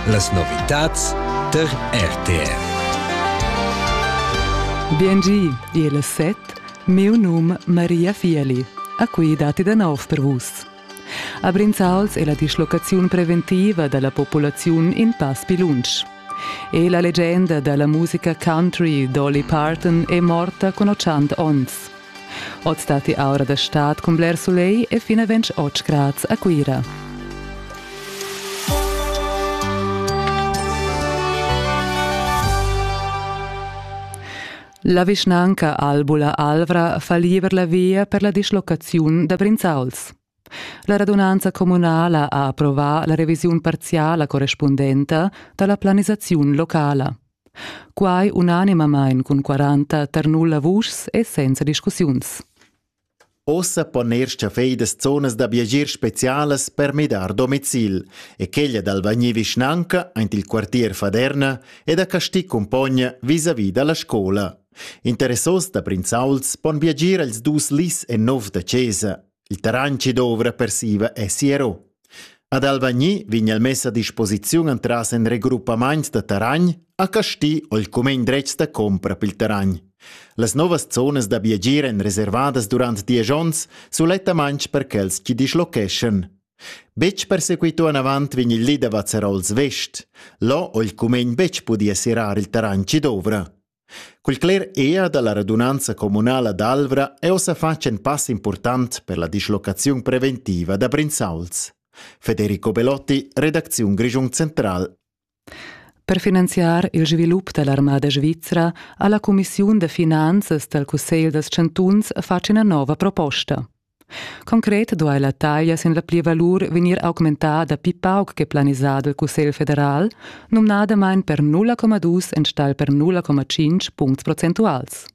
Las novitads tar RTR. Biengi, il set, miu num Maria Fieli, a cui dati da nov per vus. A Brinzals è la dislocaziun preventiva dalla popolaziun in pass più lunsch. E la leggenda dalla musica country Dolly Parton è morta con 80 onns. Oz datti aura da stad cun bler sulegl e fin a 28 grads a Cuira. La vischnanca Albula Alvra fa liber la via per la dislocaziun da Brinzauls. La radunanza communala ha approvà la revisiun parziala correspundenta da la planisaziun locala. Quai unanimamain cun 40 tar nulla vuschs e senza discussiuns. Ossa pon er staffeidas zonas da viagier specialas per midar domicil e quella d'Alvagni vischnanca aint il quartier Faderna e da Casti cumpogna vis-à-vis da la scola. Interessos da prinzauls pon viagir als dus lis e nov da chesa. Il terrain chi dovra per siva es sierrò. Ad Alvagni vegn el mess a disposiziun entras ün regroppamaint da terrain a Casti o il cumegn dretg da compra pel terrain. Las novas zonas da viagir èn reservadas durant diesch onns sulettamain per quels chi dischlocheschan. Betg persequito anavant vegn il li da Vazzarols Vest. Là ho il cumegn betg pudì serrar il terrain chi dovra. Cul cler ea da la radunanza communala d'Alvra eu s'ha fatg ün pass important per la dislocaziun preventiva da Brinzauls. Federico Belotti, redacziun Grischun Central. Per finanziar il svilup da l'armada svizra ha la cumissiun da finanzas dal Cussegl dals chantuns fatg ina nova proposta. Concret duai la taglia sin la plivalur vegnir augmentada pli pauc che planisà dal Cussegl federal, numnadamain per 0,2 enstagl per 0,5 puncts procentuals.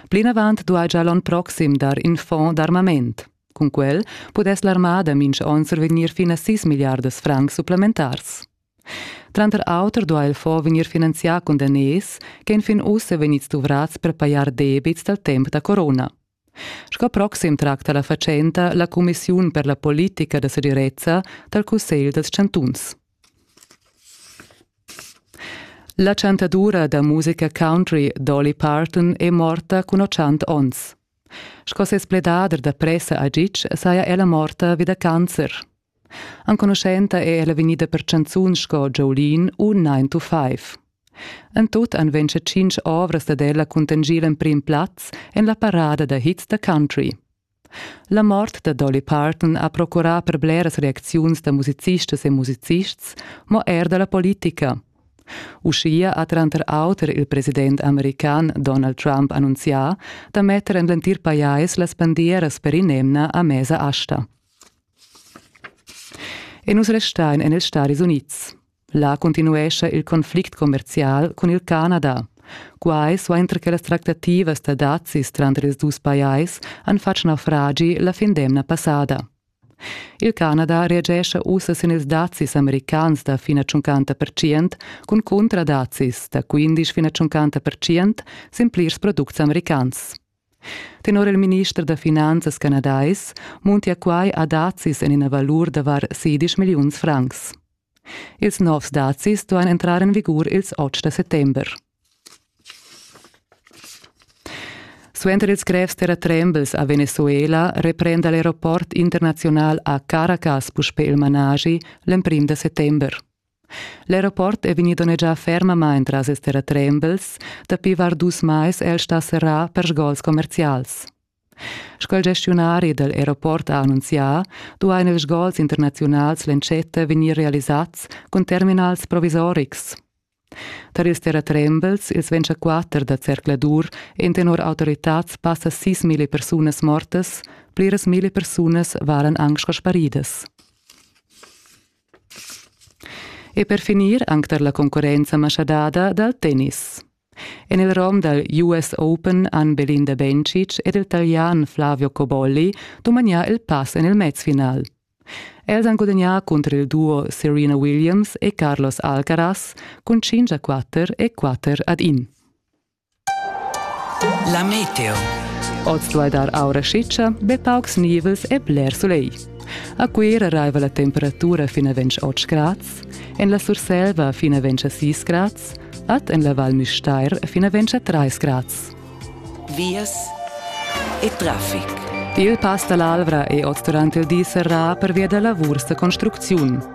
Plinavant duai gia l'onn proxim dar in fond d'armament. Cun quel pudess l'armada mincha onn survegnir fin a 6 milliardas francs supplementars. Tranter auter duai il fonds vegnir finanzià cun daners che enfin ussa vegnids duvrats per pajar debits dal temp da corona. Sco proxim tracta la fatschenta la cumissiun per la politica da segirezza dal Cussegl dals chantuns. La chantadura da musica country Dolly Parton è morta cun 80 onns. Sco ses pledader da pressa a Gitg saja ella morta vi da cancer. Enconuschenta è ella vegnida per chanzuns sco Jolene u 9 to 5. En tut han ventscha tschintg ovras dad ella cuntanschì l'emprim plaz en la parada da hits da country. La mort da Dolly Parton ha procurà per bleras reacziuns da musicistas e musicists, mo er da la politica. Uschia ha tranter auter il president american Donald Trump annunzià da metter en l'entir pajais las bandieras per in'emna a mesa asta. E nus restain en ils Stadis Unids. Là continuescha il conflict commerzial cun il Canada. Quai suenter che las tractativas da dazis tranter ils dus pajais han fatg naufragi la fin d'emna passada. Il Canada reagescha ussa sin ils dazis americans da fina 50% cun cuntradazis da 15 fina 50% sin plirs products americans. Tenor il minister da finanzas canadais muntia quai a dazis en ina valur da var sedisch milliuns francs. Ils novs dazis duain entrar en vigur ils otg da settember. Suenter ils grevs terratrembels a Venezuela reprenda l'aeroport internaziunal a Caracas puspè il managi l'emprim da settember. L'aeroport è vegnì donnegià fermamain tras ils terratrembels. Dapi var dus mais è el stà serrà per sgols commerzials. Sco il gestiunari dal aeroport ha annunzià, duain ils sgols internaziunals l'entschetta vegnir realisads cun terminals provisorics. Tar ils terratrembels, ils 24 da zercladur, en tenor autoritads passa 6.000 persunas mortas, pliras mille persunas varan anc sco sparidas. E per finir anc tar la concurrenza maschadada dal tennis. En il rom dal US Open han Belinda Bencic ed il Talian Flavio Cobolli dumagnà il pass en il mezfinal. Els han gudagnà cunter il duo Serena Williams e Carlos Alcaraz cun 5 a 4 e 4 ad 1. La meteo. Oz duai dar aura schitscha, be paucs nivels e bler sulegl. A Cuira raiva la temperatura fin a 28 grads, en la Surselva fin a 26 grads, ad en la Val Müstair fin a 23 grads. Vias e traffic. Il pass da l'Alvra è oz durant il di serrà pervia da lavurs da construcziun.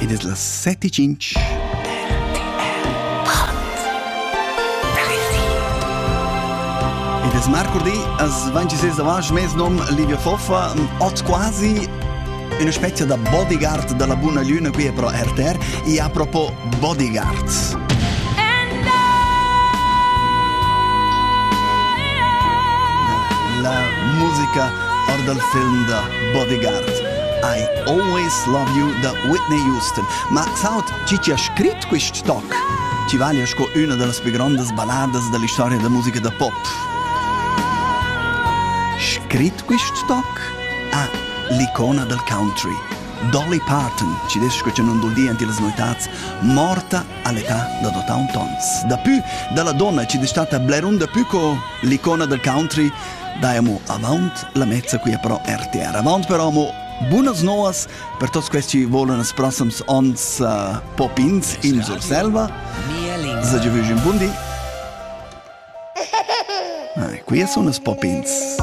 Ed es las set e tschinch. Ed es marcurdi, as 26 avast mes nom Livio Foffa, ot quasi una specie da bodyguard dalla Buna Luna qui a pro RTR e a propos bodyguards. La musica or dal film da Bodyguard. I always love you da Whitney Houston. Ma saut, chi chi ha scrit quist toc? Ti vaglia sco üna da las plü grondas balladas da l'istoria da musica da pop. Scrit quist toc? Ah, l'icona del country. Dolly Parton, ci des che non dul di anti las noitats, morta all'età da 81 ans. Dapü dalla donna ci destata bler un dapü co l'icona del country Dai amo avaunt la mezza quia però RTR. Avaunt però amo bunas noas per tuots quels chi volan ils prossums ons uh, popins in Surselva. Sa giovüsch un bun di. Ah, quia sun els popins.